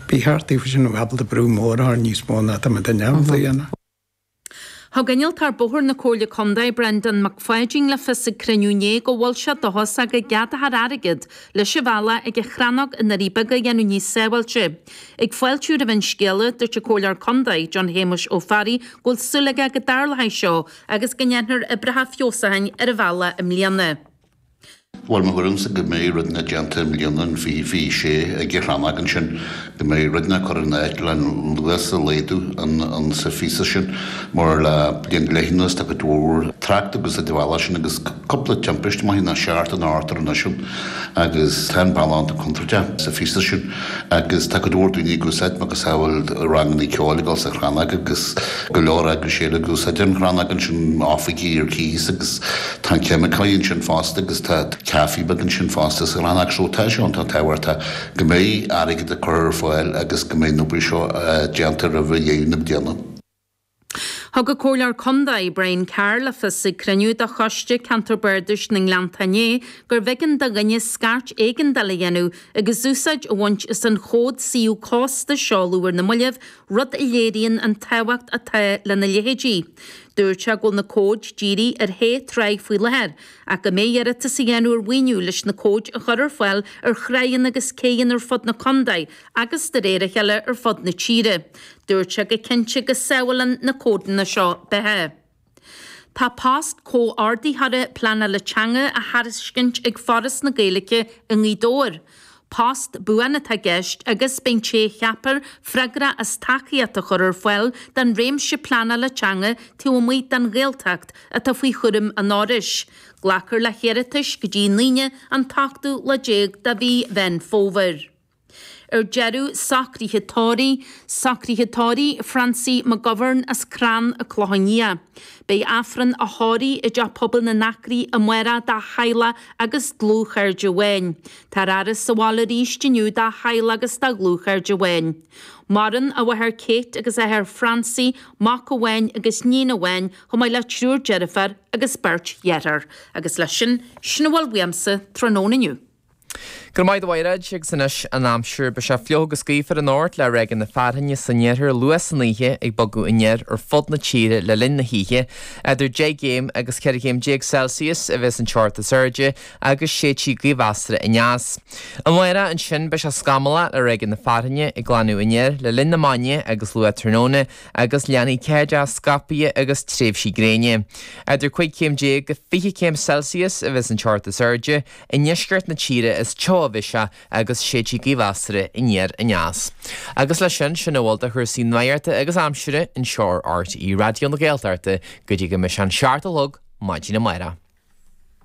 Bhí thart aoibhinn sin an Abhall de Brú Mór a tharraing níos mó ná tá mé de neamh di dhéanamh. Thug innealtóir bóthair na Comhairle Contae, Brendan McFadden, le fios ag cruinniú inné go bhfuil sé dóchasach go gceadófar airgead leis an bhealach ag an Chrannóg i nDoirí Beaga a dhéanamh níos sábháilte. Ag fáiltiú roimh an scéala, dúirt an Comhairleoir Contae, John Shéamuis Ó Fearraigh, go bhfuil súil aige go dtarlóidh seo agus go ndéanfar oibreacha feabhsúcháin ar an bhealach i mbliana. Bhuel, mo thuairimse go mbeidh rud inteacht déanta i mbliana, an 2026, ag an Chrannóg ansin. Go mbeidh rud inteacht curtha in áit le luas a laghdú insa phíosa sin. Mar le bliain go leith anuas tá cuid mhór trácht ag úsáid an bhealaigh sin agus cúpla timpiste, maith ná seart, in Arthur anois ann agus tá an bhealach an-chontráilte sa phíosa sin. Agus tá go leor daoine ag úsáid macasamhail ranganna ceoil ag dul sa Chrannóg agus go leor eagrais eile ag úsáid an Chrannóg ansin, oifigí ar cíos agus tá an ceimiceoir ansin fosta agus tá caifé beag ansin fosta sa Chrannóg. So tá sé iontach tábhachtach go mbeidh airgead á chur ar fáil agus go mbeidh an obair seo déanta roimh dheireadh na bliana. Thug an Comhairleoir Contae, Brian Carr, le fios ag cruinniú de Choiste Ceantair Bardais na nGleannta inné gurbh éigean do dhuine scairt éigeandála a dhéanamh agus úsáid a bhaint as an chód suíomh cósta a seoladh ar na mallaibh, rud a léiríonn an tábhacht atá lena leithéidí. Dúirt sé go bhfuil na cóid dírithe ar shé thráigh faoi láthair, ach go mbeidh iarratas á dhéanamh ar mhaoiniú leis na cóid a chur ar fáil ar thráigheanna agus céidheanna ar fud na Contae agus, de réir a chéile, ar fud na tíre. Dúirt sé go cinnte go sábhálann na códanna seo beatha. Tá post Comhordaitheora Pleanála Teanga á thairiscint ag Foras na Gaeilge i nGaoth Dobhair. Post buan atá i gceist agus beidh an té a cheapfar freagrach as tacaíocht a chur ar fáil don réimse pleanála teanga taobh amuigh den Ghaeltacht atá faoi chúram an Fhorais. Glacfar le hiarratais go dtí an Aoine an t-ochtú lá déag de mhí Mheán Fómhair. Ar deireadh, socruithe tórraimh, socruithe tórraimh Francie McGovern as Crann a Clocha Nia. Beidh Aifreann a thórraimh i dTeach Pobail na nAcraí amárach dá theaghlach agus dlúthchairde amháin. Tá an fhaire sa bhaile arís inniu dá theaghlach agus dá dhlúthchairde amháin. Maireann a mháthair Kate agus a athair Francie, mac amháin agus níon amháin, chomh maith le triúr deirféar agus beirt dhearthár. Agus leis sin, sin a bhfuil uaimse tráthnóna inniu. Go raibh maith agat a Mhairéad, agus anois an aimsir. Beidh sé fliuch agus gaofar anocht le ráigeanna fearthainne san iarthar luath san oíche ag bogadh aniar ar fud na tíre le linn na hoíche. Eadar deich gcéim agus ceithre chéim déag Celsius a bheas an teocht is airde agus séidfidh gaoth mheasartha aneas. Amárach ansin beidh sé scamallach le ráigeanna fearthainne ag glanadh aniar le linn na maidne agus luath tráthnóna agus leanfaidh ceathaideacha scaipthe agus tréimhsí gréine. Eadar cúig chéim déag go fiche céim Celsius a bheas an teocht is airde I ndeisceart na tíre is teo a bheas sé agus séidfidh gaoth mheasartha aniar aneas. Agus leis sin, sin a bhfuil do chúrsaí nuachta agus aimsire anseo ar RTÉ Raidió na Gaeltachta go dtí go mbeidh sé an seacht a chlog maidin amárach.